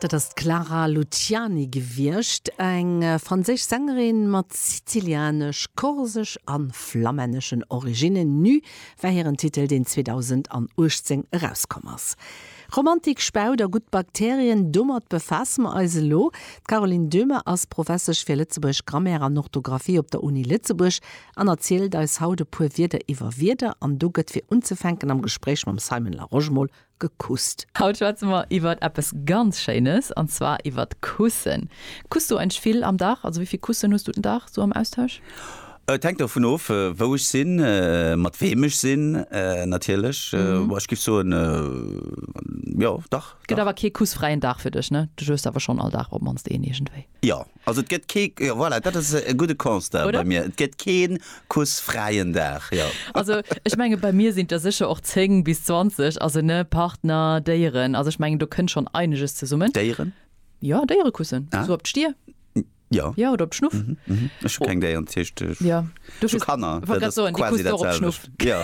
Dat ass d'Clara Luciani gewiescht, eng franséisch Sängerin mat sizilianesch, korsesch a flamänneschen Originnen. Nu war hiren Titel, deen 2018 erauskomm ass. Romantik, Spaut a gutt Bakterien, domat befaasse mer eis elo. D'Caroline Döhmer ass Professesch fir Lëtzebuergesch Grammaire an Orthografie op der Uni Lëtzebuerg an erzielt eis haut e puer Wierder iwwer Wierder. An do gëtt fir unzefänken am Gespréich mam Simon Larosche mol gekusst. Haut schwätze mer iwwert eppes ganz Schéines, an zwar iwwert d'Kussen. Kuss du eigentlech vill am Dag? Also wéi vill Kussen hues du den Dag sou am Austausch? Et hänkt dovun of, wou ech sinn, mat weem ech sinn natierlech. Bon, ech géif soen, jo, dach. Et gëtt awer kee kussfräien Dag fir dech, ne? Du hues awer schonn all Dag op d'mannst een iergendwéi. Jo, also et gëtt kee, jo voilà, dat ass e gudde Constat bei mir, et gëtt kee kussfräien Dag, jo. Also ech menge bei mir sinn et der sécher och 10 bis 20, also ne, Partner, Déieren, also ech mengen do kënnt schonn eineges zesummen. Déieren? Jo, Déiere kussen, esou op d'Stier. Jo. Jo, oder op d'Schnuff. Ech hu keng Déieren, dat heescht ech hu Kanner, dat ass quasi dat selwecht. Jo.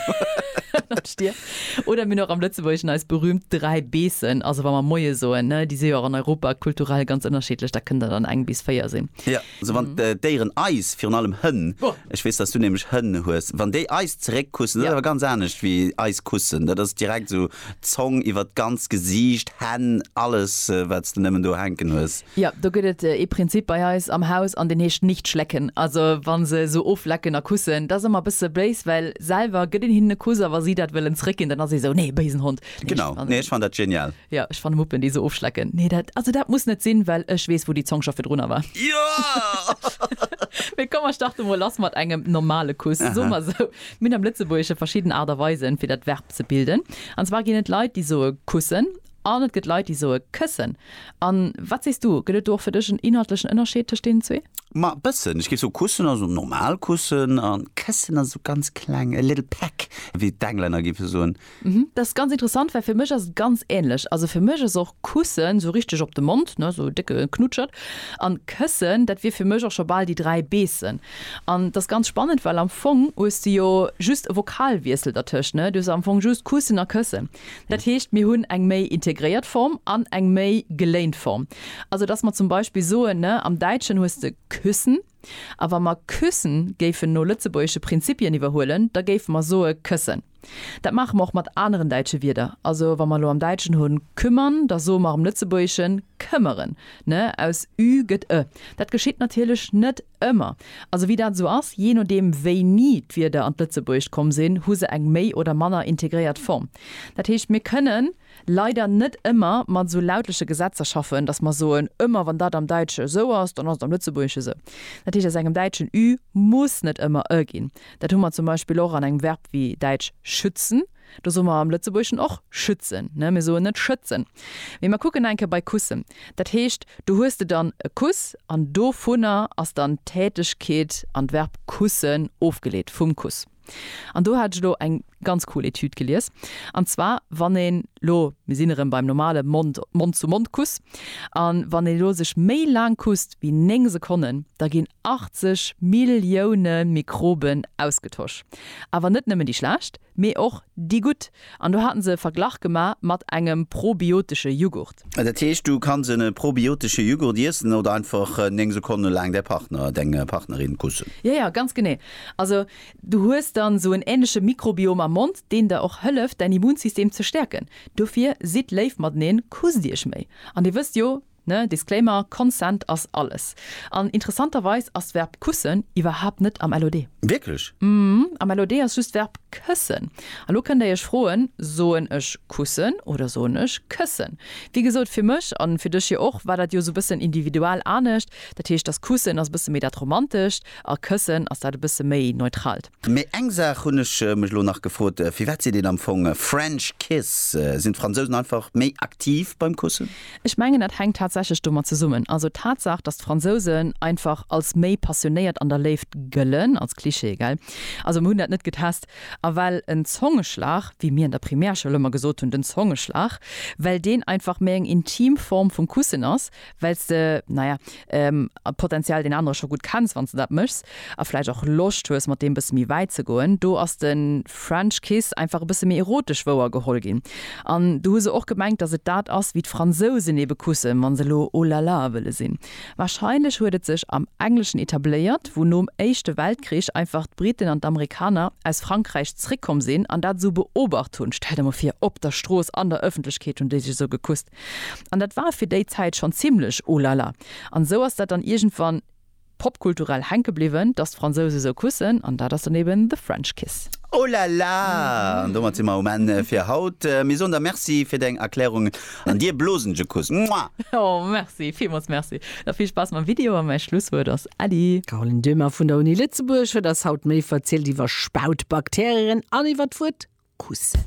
Oder mir hunn och am Lëtzebuergeschen eis berühmt dräi Beessen, also wa mer Moie soen, ne, déi si jo och an Europa kulturell ganz ënnerschiddlech, da kënnt der dann eng bis véier sinn. Jo, also wann d'Déieren eis, virun allem Hënn, ech weess, dass du nämlech Hënn hues, wann déi eis zeréckkussen, dat ass awer ganz anescht wéi eis kussen, dat ass direkt esou. Zong iwwert d'ganzt Gesiicht, Hänn, alles wats de nemmen do hänken hues. Jo, do gëtt et ee Prinzip bei eis am Haus an deen heescht nicht schlecken. Also wa se esou oflecken a kussen, dat ass ëmmer e bësse béis, well selwer gëtt een hinnen e Kuss a wa si dat wëllen zréckginn, dann ass ee esou, nee, béisen Hond. Genau, nee ech fannen dat genial. Jo, ech fanne Muppen déi esou ofschlecken, nee dat, also dat muss net sinn, well ech weess wou déi Zong scho virdrunner war. Mee komm mer starte mol lass mat engem normale Kuss. Soe mer esou, mir hunn am Lëtzebuergesche verschidden Aart a Weisen fir dat Verb. ze bilden. An zwar ginn et Leit, déi soe kussen an et gëtt Leit, déi soe këssen. A wat sees du, gëtt et do och fir dech en inhaltlechen Ënnerscheed tëscht deenen zwee? Ma e bëssen. Ech géif soe kussen ass esou normal kussen a këssen ass esou ganz kleng, a little peck, wéi d'Englänner géife soen. Mhm, dat ass ganz interessant, well fir mech ass et ganz änlech. Also fir mech ass och kussen esou richteg op de Mond, ne, esou e décke Knutschert. An këssen, dat wier fir mech och scho bal déi dräi beessen. An t'ass ganz spannend, well am Fong hues de jo just e Vokalwiessel dertëscht, ne? Du hues am Fong just kussen a këssen. Dat heescht, mir hunn eng méi integréiert Form an eng méi geléint Form. Also dass mer zum Beispill soen, ne, am Däitschen hues de küssen, a wa mer küssen géifen no lëtzebuergesche Prinzipien iwwerhuelen, da géife mer soe këssen. Dat maache mer och mat aneren däitsche Wierder. Also wa mer elo am Däitschen hunn kümmern, da soe mer am Lëtzebuergeschen këmmeren, ne? Aus ü gëtt e. Dat geschitt natierlech net. Ëmmer. Also wéi dat esou ass, jee nodeem wéini d'Wierder an d'Lëtzebuergescht komm sinn, hu se eng méi oder manner integréiert Form. Dat heescht, mir kënnen leider net ëmmer mat esou lautleche Gesetzer schaffen, datt mer soen, ëmmer wann dat am Däitsche esou ass, dann ass et am Lëtzebuergesche esou. Dat heescht, aus engem Däitschen ü muss net ëmmer ë ginn. Dat hu mer zum Beispill och an engem Verb wéi däitsch schützen. Do soe mer am Lëtzebuergeschen och schützen, ne? Mir soen net schëtzen. Mee mer kucken eng Kéier bei kussen. Dat heescht, do hues de dann e Kuss an dovunner ass dann d'Tätegkeet an d'Verb kussen ofgeleet, vum Kuss. An do hat ech elo eng ganz cool Etüd gelies. An zwar, wann een elo, mir sinn erëm beim normale Mond, Mond-zu-Mond-Kuss, a wann een elo sech méi laang kusst wéi 9 Sekonnen, da ginn 80 Millioune Mikroben ausgetosch. Awer net nëmmen déi schlecht, mee och déi gutt, an do haten se e Verglach gema mat engem probiotesche Jughurt. Dat heescht, du kanns en probiotesche Jughurt iessen oder einfach 9 Sekonne laang däi Partner, deng Partnerin kussen. Jo, jo, ganz genee. Also du hues dann esou en ähnleche Mikrobiom am Mond, deen der och hëlleft, däin Immunsystem ze stäerken. Dofir sidd léif mateneen, kusst iech méi. An dir wësst jo, Ne, Disclaimer, Consent ass alles. An interessanterweis ass d'Verb kussen iwwerhaapt net am LOD. Wierklech? Mhm, am LOD ass just d'Verb këssen. A lo kënnt Dir Iech froen, Soen ech kussen oder soen ech këssen? Wéi gesot, fir mech, an fir dech jo och, war dat jo esou e bëssen individual anescht. Dat heescht, dass kussen ass e bësse méi dat Romantescht a këssen ass dat e bësse méi Neutralt. Mee eng Saach hunn ech mech elo nach gefrot, Firwat seet een am Fong French Kiss? Sinn d'Fransousen einfach méi aktiv beim Kussen? Ech mengen dat hänkt tatsächlech domat zesummen. Also d'Tatsaach, datt d'Fransousen einfach als méi passionéiert an der Léift gëllen, als Klischee, gell? Also mer hunn dat net getest. A well en Zongeschlag, wéi mir an der Primärschoul ëmmer gesot hunn, den Zongeschlag, well deen einfach méi eng intim Form vum Kussen ass, well s de, na ja, potentiell deen anere scho gutt kenns, wann s de dat méchs, a vläicht och Loscht hues, mat deem bësse méi wäit ze goen. Do ass de French Kiss einfach e bësse méi erotesch wouer geholl ginn. An do hu se och gemengt, datt et dat ass, wéi d'Fransousen eebe kussen, wa se elo oh la la wëlle sinn. Warscheinlech huet et sech am Engleschen etabléiert, wou nom Éischte Weltkrich einfach d'Briten an d'Amerikaner aus Frankräich zréckkomm sinn an dat esou beobacht hunn. Stell der emol vir, op der Strooss, an der Ëffentlechkeet hunn déi sech esou gekusst. An dat war fir déi Zäit schonn zimlech oh la la. An esou ass dat dann iergendwann popkulturell hänke bliwwen, dass d'Fransouse esou kussen. An dat ass dann eben The French Kiss. Oh la la! An domat si mer um Enn fir haut. Mir soen der Merci fir deng Erklärungen an dir blosen je Kuss. Muah! Oh merci, villmools merci. Da vill Spaass mam Video a mäi Schlusswuert ass Äddi. D'Caroline Döhmer vun der Uni Lëtzebuerg huet eis haut méi verzielt iwwer Spautbakterieren an iwwer d'Wuert kussen.